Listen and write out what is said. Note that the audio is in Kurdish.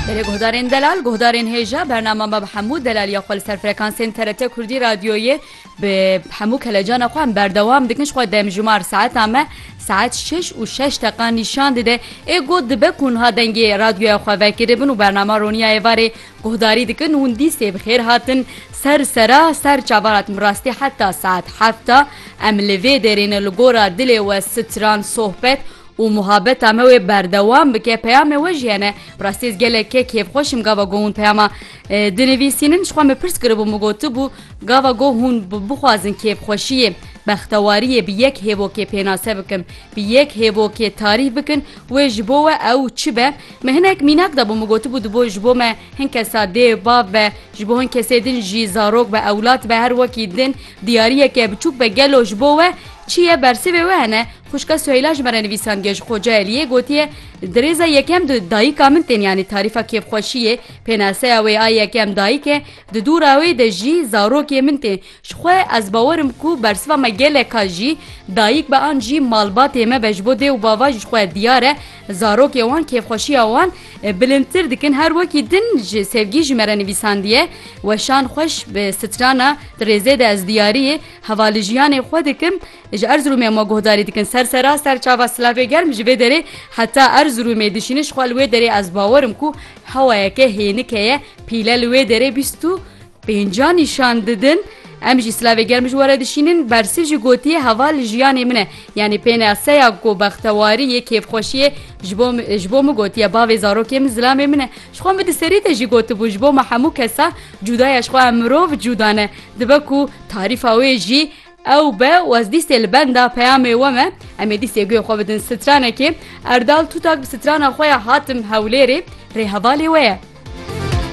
Berê guhdarên delal, guhdarên hêja, bernama me bi hemû delaliya xwe li ser frekansên TRT Kurdî Radyoyê bi hemû kelecana xwe em berdewam dikin ji xwe demjimar saeta me saet şeş û şeş deqa nîşan dide ê got dibe ku niha dengê radyoya xwe vekiribin û bernama roniya êvarê guhdarî dikin hûn dîsê bi xêr hatin ser sera ser çavarat min rastî heta saet hefta em li vê dêrêne li gora dilê we stran sohbet û muhabeta me wê berdewam bike peyamê we jî hene bi rastî ez geleke kêfxweş im gava goh hûn peyama dinivîsînin ji xwe me pirs kiribûm min gotibû gava goh hûn bixwazin kêfxweşiyê bextewariyê bi yek hêvokê pênase bikin bi yek hêvokê tarîf bikin wê ji bo we ew çi be min hinek mînak dabû min gotibû di bo ji bo me hin kesa dêv bav be ji bo hin kesê din jî zarok be ewlat be her wekî din diyariyeke biçûk be gelo ji bo we çi ye bersivê we hene Xwişka Suheyla ji me re nivîsan Gej Xoce Eliyê gotiye, Di rêza yekem de dayika min tên yanî tarîfa kêfxweşiyê, pênaseya wê a yekem dayik e, di dû rawê de jî zarokê min tê. Ji xwe ez bawer im ku bersiva me gelek a jî dayik be an jî malbatê me be ji bo dê û bava ji xwe diyar e zarokê wan kêfxweşiya wan bilindtir dikin. Her wekî din ji Sevgî ji me re nivîsandiye, Weşan xweş bi strana di rêzê de ez diyariyê hevalijîyanê xwe dikim. Ji Erzirûmê ma guhdarî dikin ser sera ser çava Silavê Germ ji vê derê heta Erzirûmê dişînin ji xwe li wê derê ez bawer im ku hewayeke hênike ye pîle li wê derê bîst û pênca nîşan didin em jî Silavê Germ ji were dişînin Bersîv jî gotiye heva li jiyanê min e yanî pênaseya ku bextewariyê kêfxweşiyê ji bo ji bo min gotiye bavê zarokê min zilamê min e ji xwe min di serî de jî gotibû ji bo me hemû kesa cûdaya ji xwe em mirov cûda ne dibe ku tarîfa wê jî Ew be waz dîstê li benda peyamê we me em ê dîstê guê xwe bidin stranekê. Erdal Tutak bi strana xwe ya Hatim Hewlêrê rê hevalê we ye.